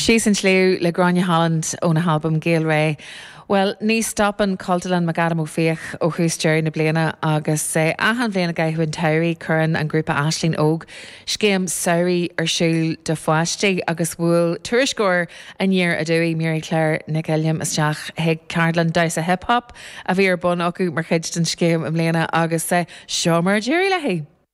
Síos an tsliabh le Gráinne Holland óna halbam Gael Ré. Bhuel, ní stopann Cultúrlann McAdam Ó Fiaich ó thús deireadh na bliana agus achan bhliain i gcaitheamh an tsamhraidh cuireann an grúpa Aisling Óg scéim samhraidh ar siúl do pháistí agus bhuail tuairisceoir Aniar Aduaidh, Maire-Claire Nic Uilliam isteach chuig ceardlann damhsa hip hop a bhí ar bun acu mar chuid den scéim i mbliana agus seo mar a d'éirigh léi.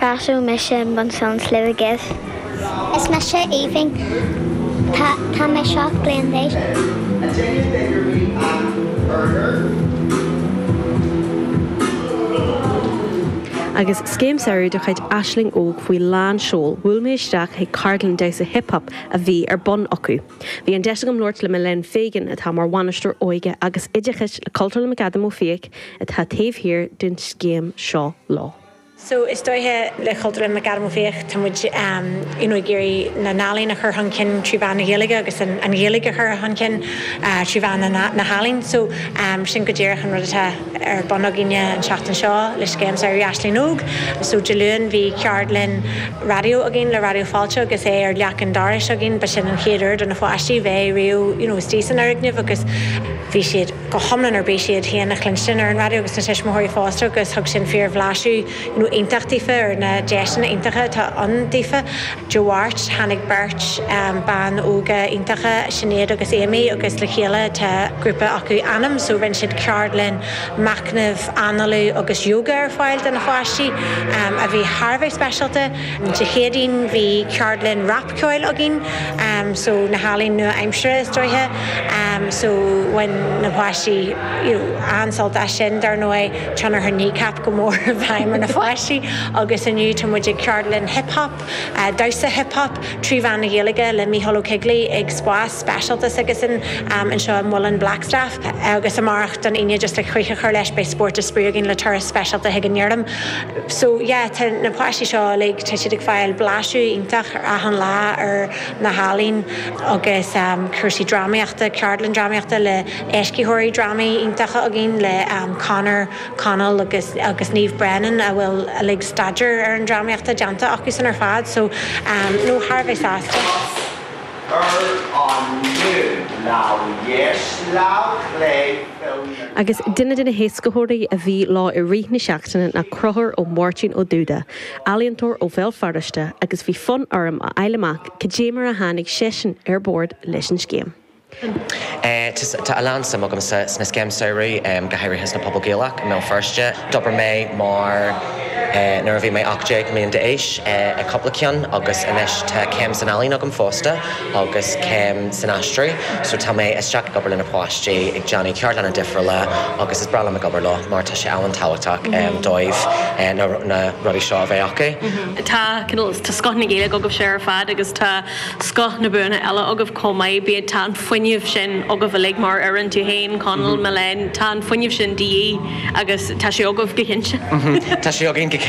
Casadh mise i mbun san sliabh i gCiv. Is mise aoibhinn, tá mé seacht mbliain d'aois. Agus scéim samhraidh de chuid Aisling Óg faoi lán seoil, bhuail mé isteach chuig ceardlann damhsa hip hop a bhí ar bun acu. Bhí an deis agam labhairt le Milène Fegan, atá mar bhainisteoir óige agus oideachais le Cultúrlann McAdam Ó Fiaich, atá taobh thiar den scéim seo. So is dóiche le Cultúrlann McAdam Ó Fiaich tá muid you know ag iarraidh na n-ealaín a chur chun cinn trí mheán na Gaeilge agus an Ghaeilge a chur chun cinn trí mheán na n-ealaíon. So sin go díreach an rud atá ar bun againne an tseachtain seo le scéim Samhraidh Aisling Óg. So Dé Luain bhí ceardlann raidió againn le Raidió Fáilte agus é ar leac an dorais againn. Ba sin an chéad uair do na pháistí bheith riamh you know istigh san fhoirgneamh agus bhí siad. go hiomlán ar bís iad féin a chluinstin ar an raidió agus na tuismitheoirí fosta agus thug sin fíor-bhlaiseadh iontach daofa ar na deiseanna iontacha atá ann daofa. Dé Máirt, tháinig beirt bhan óga iontacha, Sinéad agus Amy, agus le chéile tá grúpa acu, Anam, so rinne siad ceardlann machnaimh, análú agus yoga ar fáil do na pháistí a bhí thar a bheith speisialta. Dé Céadaoin bhí ceardlann rapcheoil againn so na healaíona nua-aimseartha is dóiche so bhain na páistí you know an-sult as sin. Dar ndóigh tionchar Kneecap go mór i bhfeidhm ar na pháistí agus inniu tá muid ag ceardlann hip hop, damhsa hip hop trí mheán na Gaeilge le Mícheál Ó Coigligh ag Spás. speisialta s'aigesean anseo i Muileann Blackstaff agus amárach Dé hAoine just le críoch a chur leis beidh spórt is spraoi againn le turas speisialta chuig an fheirm so yeah tá na páistí seo uilig tá siad ag fáil blaiseadh iontach ar achan lá ar na healaín agus cúrsaí drámaíochta ceardlann drámaíochta le éascaitheoirí drámaí iontacha againn le Conor Connell agus agus Niamh Brennan a bhfuil uilig staidéar ar an drámaíocht déanta acu san ar fad so no thar a bheith sásta. ar an mbonn lamh dheis lamh chlé Chill na. Agus duine de na héascaitheoirí a bhí leo i rith na seachtaine ná Conchúr Ó Máirtín Ó Dúda, ealaíontóir ó Bhéal Feirste, agus bhí fonn orm a fháil amach cad é mar a tháinig seisean ar bord leis an scéim. Tá a lán suim agamsa sna scéim samhraidh, go háirithe sna pobail Gaelach i mBéal Feirste. D'obair mé mar. Nuair a bhí mé 18 mbliana d'aois, ag cúpla ceann, agus anois tá céim san ealaín agam fosta agus céim san aistriú, so tá mé isteach ag obair le na páistí, ag déanamh ceardlanna difriúla agus is breá liom a bheith ag obair leo mar tá sé an-tábhachtach dóibh na rudaí seo a bheith acu. Tá, tá scoth na Gaeilge agaibhse ar fad agus tá. scoth na mbuanna eile agaibh chomh maith, bíodh, tá an fuinneamh sin agaibh uilig mar fhoireann, tú féin, Conall, Milène, tá an fuinneamh sin de dhíth agus tá sé agaibh go cinnte. Tá sé againn go cinnte.